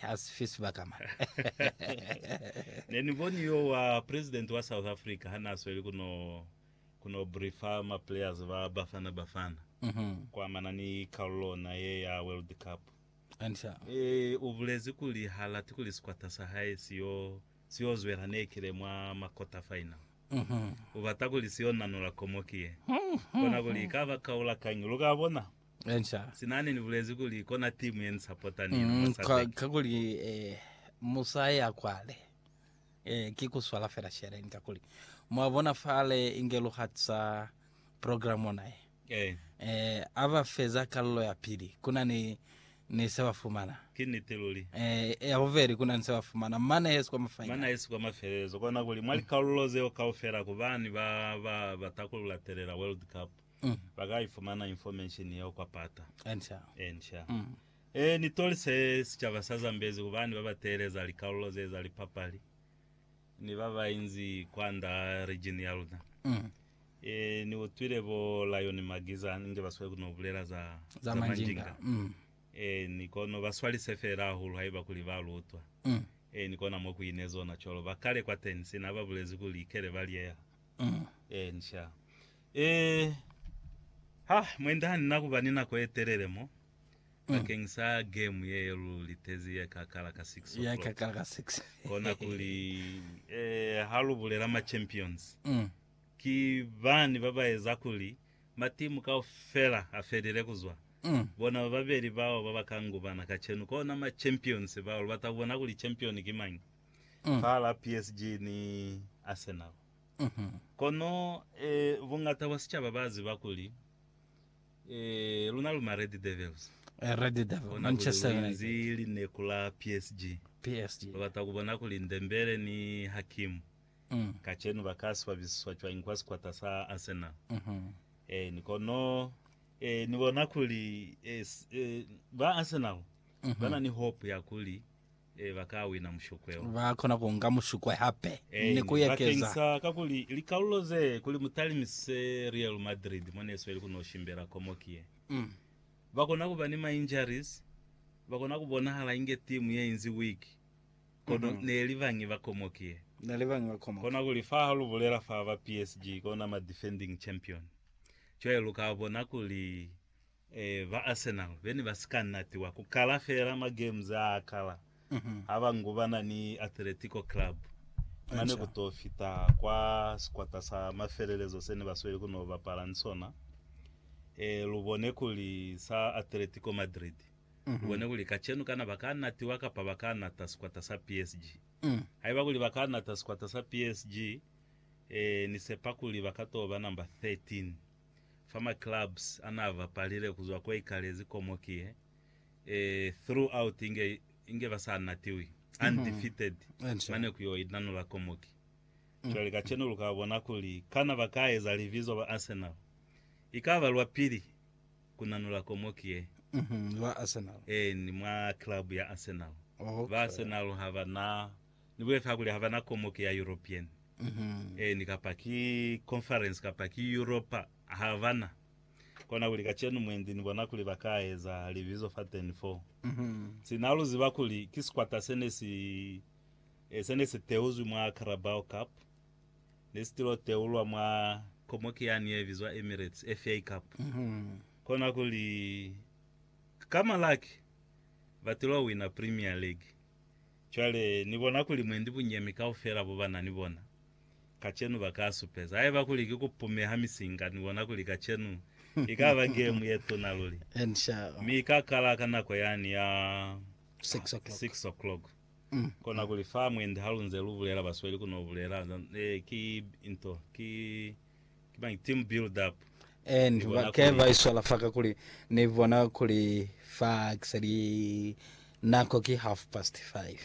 Ha si fe sibaka mane. Ne ni boni yo wa president wa South Africa ha n'a sweli ku no, ku no briefa ma players ba Bafana Bafana ku amana ni kalulo ona ye ya World Cup. Eeh, u bulezi kuli h'a lati kuli sikwata sa hae si yo, si yo zwela nekile mwa ma quarter final. U bata kuli si yo nanula komoki ye. Kona kuli i ka ba kaula kañi, lu ka bona. Enca. Sinani ni bulezi kuli kona timu ye ni sapota ni yona mwa Mm, ka, Sadec. kakuli eh, musai a kwale eh, ki ku swala fela sheleni, kakuli mwa bona fale inge lu hatisa program ona ye Eh, eh, a ba feza kalulo ya pili kuna ni, ni se ba fumana ki niti luli. eh, ya bubeli kuna ni se ba fumana mane hesi kwa Mana mafainali. yesi kwa mafelelezo kona kuli mwa likalulo zeo kaufela ku bani ba, ba, ba takulula telela World Cup. ba ka ifumana information yeo kwa pata e nsha. E ni toli se sicaba sa Zambezi kubani ba ba teeleza likalulo ze za lipapali ni ba ba inzi kwanda region ya luna. E ni utwile bo Lion Magiza inge ba sweli kuno bulela za, za Manjinga. E ni kono ba swalise feela hahulu haiba kuli ba lu utwa. E ni kona mo ku ine zona cwalo ba kale kwateni sina ba bulezi kuli ikele ba lieha e nsha. Ee, ha mwende ha ni na ku ba ni nako ye telele mo bakeng sa game ye ye lu litezi ye ka kala ka 6 Ya o'clock. ikakala ka 6. Kona kuli, ee, ha lu bulela ma champions, Mm. ki bani ba ba eza kuli matimu kaufela a felile ku zwa Mm. bona ba babeli bao ba ba ka ngubana kacenu. Kona ma champions bao lu bata ku bona kuli champion ki mañi Mm. fahala PSG ni Arsenal. Kono buñata bwa sicaba ba ziba kuli luna lu ma Red Devils. Kona kuli lu inzi lineku la PSG. Lu bata ku bona kuli Ndembele ni Hakim kacenu ba ka swabisiswa cwañi kwa sikwata sa Arsenal. Eeni, kono ni bona kuli ba Arsenal ba na ni hope ya kuli Ee, ba ka wina mushukwe wo. Ba kona ku nga mushukwe hape ni ku ekeza. Bakeng sa kakuli likalulo ze, kuli mu talimise Real Madrid mo ne sweli ku no shimbela komoki ye, ba kona ku ba ni ma injuries, ba kona ku bonahala inge timu ye inzi weak, kono ne li bañi ba komoki ye. Ne li bañi ba komoki. Kona kuli fa ha lu bulela fa ba PSG, kona ma defending champion, cwale lu ka bona kuli Ee, ba Arsenal be ne ba si ka natiwa ku kala feela magems a kala ha ba ngubana ni Atletico Club na ne ku t'o fita kwa sikwata sa mafelelezo se ne ba sweli ku n'o bapala ni sona. Ee, lu bone kuli sa Atletico Madrid, lu bone kuli kacenu kana ba ka natiwa kapa ba ka nata sikwata sa PSG. Haiba kuli ba ka nata sikwata sa PSG, ee, ni sepa kuli ba ka t'o ba number 13. fa ma clubs anaa bapalile kuzwa ko ikalezi komoki ye e throughout inge inge ba sa natiwi undefeated Enca. mane ku yo inanula komoki. Cwale kacenu lu ka bona kuli kana ba ka eza libizo ba Arsenal. I ka ba lwa pili ku nanula komoki ye Mhm, Ba Arsenal. eeni mwa club ya Arsenal. Ba Okay. Arsenal ha ba na Ni bulezi kakuli ha ba na komoki ya European, eeni, kapa ki Conference, kapa ki Europa, ha ba na. Kona kuli kacenu mwendi ni bona kuli ba ka eza libizo fateni foo. Sina lu ziba kuli ki sikwata se ne si, eh, se ne si teuzwi mwa Carabao Cup, ne si tilo teulwa mwa komoki yani ye bizwa Emirates FA Cup. Kona kuli ka Malaki ba tilo wina Premier League. Cwale, Ni bona kuli mwendi bunyemi kaufela bo ba na ni bona, kacenu, ba ka supeza. Haiba kuli ki ku pumeha misinga, ni bona kuli kacenu i ka ba gemu ye tuna luli. Mi i ka kala ka nako yani ya six o'clock. Kona kuli fa mwendi ha lu nze lu bulela, basweli ku no bulela, Ee, ki nto, ki. Ki mañi? Team build up. And Ni bona ba, ke kuli- ba iswala fa ka kuli ni bona kuli fa kisa li nako ki half past five.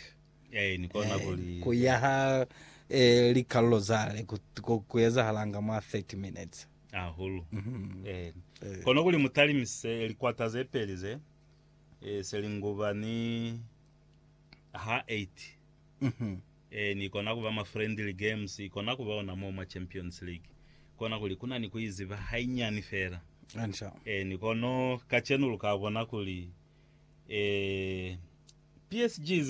Eh, ni kona Eh, kuli. ku yaha eh, likalolo zale ku, ku, ku ezahalanga mwa 30 minutes. Hahulu. Mhm. Eh. Eh. Kona kuli mutalimise likwata ze peli ze. Eh, se linguba ni ha 8. Mhm. Ee, ni kona kuba mwa friendly games, i kona kuba ona mo mwa Champions League, kona kuli kuna ni ku iziba hainyani fela. Ee, ni kono kacenu lu ka bona kuli, ee, PSG iziba